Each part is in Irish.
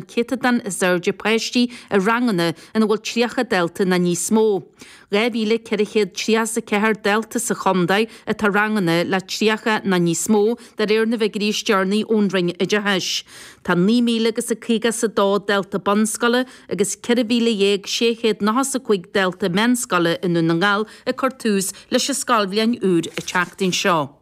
céatadán is airde páistí i ranganna ina bhfuil 30 dalta nó níos mó. 2,400 tríocha is a ceathair dalta sa chontae atá i ranganna le 30 nó níos mó, de réir na bhfiguirí is deireanaí ón Roinn Oideachais. Tá 9,000 agus caoga is a dó dalta bunscoile agus 14,600 nócha is a cúig dalta meánscoile i nDún na nGall ag cur tús leis an scoilbhliain úr an tseachtain seo.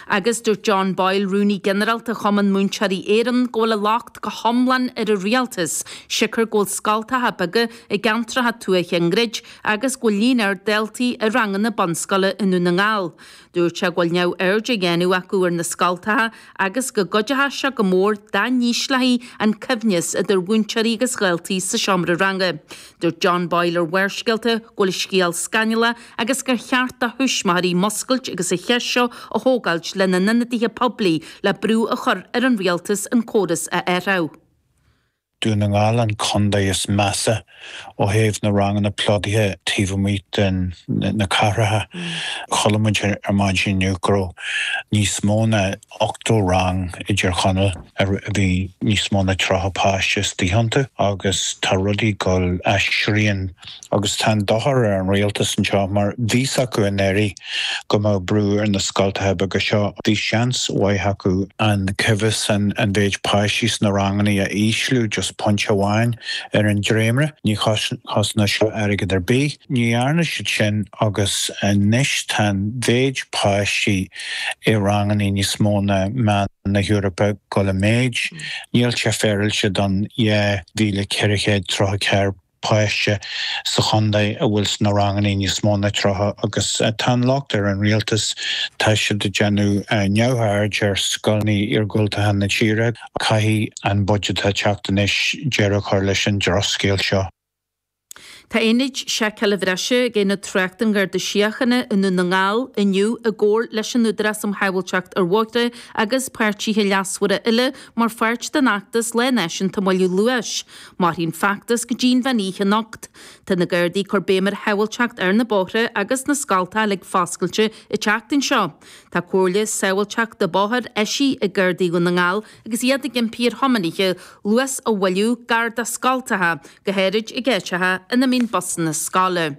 Agus dúirt John Boyle, Rúnaí Ginearálta Chumann Múinteoirí Éireann, go bhfuil an locht go hiomlán ar an rialtas, siocair go bhfuil scoltacha beaga i gceantracha tuaithe á ndruid agus go bhfuil líon ard daltaí i ranganna bunscoile i nDún na nGall. Dúirt sé go bhfuil neamhaird á dhéanamh acu ar na scoltacha agus go gcuideochadh sé go mór dá n-ísleofaí an coibhneas idir mhúinteoirí agus dhaltaí sa seomra ranga. Dúirt John Boyle ar Bharrscéalta go bhfuil an scéal scannalach agus gur cheart do thuismitheoirí muscailt agus an cheist seo a thógáilt lena n-ionadaithe poiblí le brú a chur ar an rialtas an córas a athrach. Dún na nGall an contae is measa ó thaobh na ranganna plódaithe taobh amuigh de na cathracha. Chuala muid ar maidin inniu go raibh níos mó ná ochtó rang i dTír Chonaill a bhí níos mó ná tríocha páiste istigh iontu, agus tá rudaí ag gabháil as srian, agus tá an dochar ar an rialtas anseo, mar bhí a fhios acu anuraidh go mbeadh brú ar na scoltacha beaga seo, bhí seans mhaith acu an coibhneas, an mhéid páistí sna ranganna a ísliú, just pointe amháin ar an dréimire, ní chosnódh seo airgead ar bith. Ní dhearna siad sin, agus anois tá an mhéid páistí. i ranganna níos mó ná meán na hEorpa ag gabháil i méid níl sé féaráilte don 2,434 páiste sa chontae a bhfuil sna ranganna níos mó ná tríocha agus tá an locht ar an rialtas tá siad ag déanamh neamhaird ar scoileanna iargúltacha na tíre caithfidh an budget atá ag teacht anois deireadh a chur leis an drochscéal seo. Tá ionaid seiceála bhreise ag Aonad Tráchta an Gharda Síochána i nDún na nGall inniu i gcomhar leis an Údarás um Shábháilteacht ar Bhóithre agus páirtithe leasmhara eile mar pháirt den fheachtas Lá Náisiúnta Moilliú Luais. Mairfidh an feachtas go dtí an mheán oíche anocht. Tá na Gardaí ag cur béim ar shábháilteacht ar na bóithre agus na scoltacha ag foscailt an tseachtain seo. Tá comhairle sábháilteachta bóthair eisithe ag Gardaí Dhún na nGall Agus iad ag impí ar thiománaithe luas a mhoilliú, gar do scoltacha, go háirid i gceantracha ina mbíonn busanna scoile.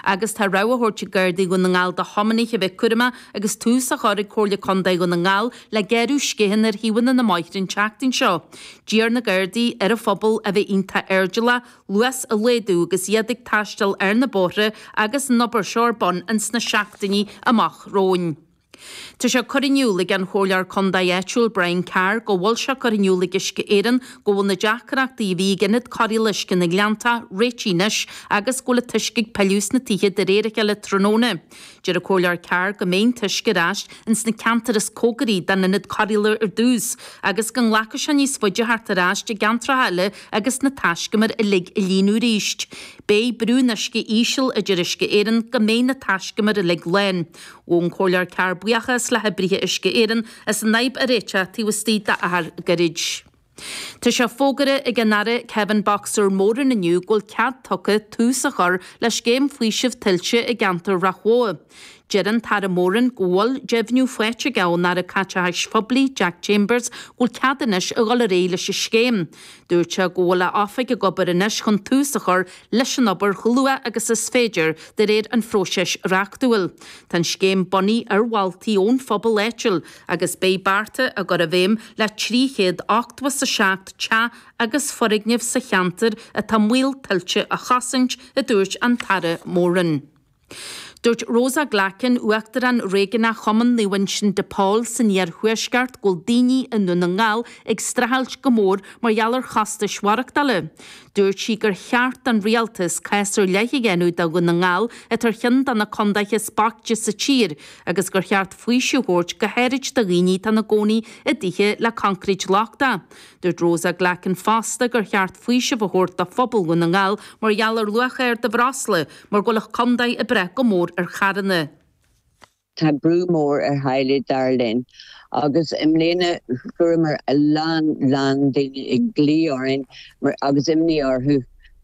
Agus tá rabhadh á thabhairt ag Gardaí Dhún na nGall do thiománaithe a bheith cúramach agus tús á chur ag Comhairle Contae Dhún na nGall le gearradh sceachanna ar thaobhanna na mbóithre an tseachtain seo. D'iarr na Gardaí ar an phobal a bheith iontach airdeallach, luas a laghdú agus iad ag taisteal ar na bóithre agus an obair seo ar bun ins na seachtainí amach romhainn. Tá sé curtha in iúl ag an Chomhairleoir Contae áitiúil Brian Carr go bhfuil sé curtha in iúl ag Uisce Éireann go bhfuil na deacrachtaí a bhí ag Ionad Cóireála Uisce na nGleanntach réitithe anois agus go bhfuil an t-uisce ag pilleadh chuig na tithe de réir a chéile tráthnóna. Deir an Comhairleoir Carr go mbeidh an t-uisce ar ais ins na ceantair is cóngaraí don Ionad Cóireála ar dtús agus go nglacfaidh sé níos faide teacht ar ais i gceantracha eile agus na taiscumair uilig a líonadh arís. Beidh brú an uisce íseal, a deir Uisce Éireann, go mbeidh na taiscumair uilig lán. Ghabh an Comhairleoir Carr buíochas le hoibrithe Uisce Éireann as an fhadhb a réiteach taobh istigh d'achar gairid. Tá sé fógartha ag an Aire Kevin 'Boxer' Moran inniu go bhfuil cead tugtha tús a chur le scéim faoisimh tuilte i gceantar Rath Bhotha. Deir an tAire Moran go bhfuil deimhniú faighte aige ón Aire Caiteachais Phoiblí Jack Chambers go bhfuil cead anois a dhul ar aghaidh leis an scéim. Dúirt sé go bhfuil a oifig ag obair anois chun tús a chur leis an obair chomh luath agus is féidir de réir an phróisis reachtúil. Tá an scéim bunaithe ar mholtaí ón phobal áitiúil agus beidh bearta á gcur i bhfeidhm le 387 teach agus foirgneamh sa cheantar atá i mbaol tuilte a chosaint, a dúirt an tAire Moran. Dúirt Rosa Glackin, uachtarán réigiúnach Chumann Naomh Uinseann de Pól san iarthuaisceart, go bhfuil daoine i nDún na nGall ag streachailt go mór mar gheall ar chostais mhaireachtála. Dúirt sí gur cheart don rialtas cás ar leith a dhéanamh do Dhún na nGall, atá ar cheann de na contaetha is boichte sa tír, agus gur cheart faoiseamh a thabhairt go háirid do dhaoine atá ina gcónaí i dtithe le concrete lochtach. Dúirt Rosa Glackin fosta gur cheart faoiseamh a thabhairt do phobal Dhún na nGall mar gheall ar luach ard an bhreosla, Mar go bhfuil an chontae ag brath go mór ar charranna. Tá brú mór ar theaghlaigh dar linn agus i mbliana fuaireamar a lán lán daoine ag glaoch orainn agus imní orthu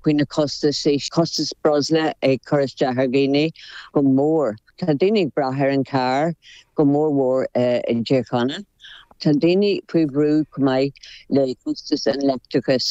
faoi na costas. Costas breosla ag cur isteach ar dhaoine go mór. Tá daoine ag brath ar an carr go mór mhór i dTír Chonaill. Tá daoine faoi bhrú chomh maith le costas an leictreachais.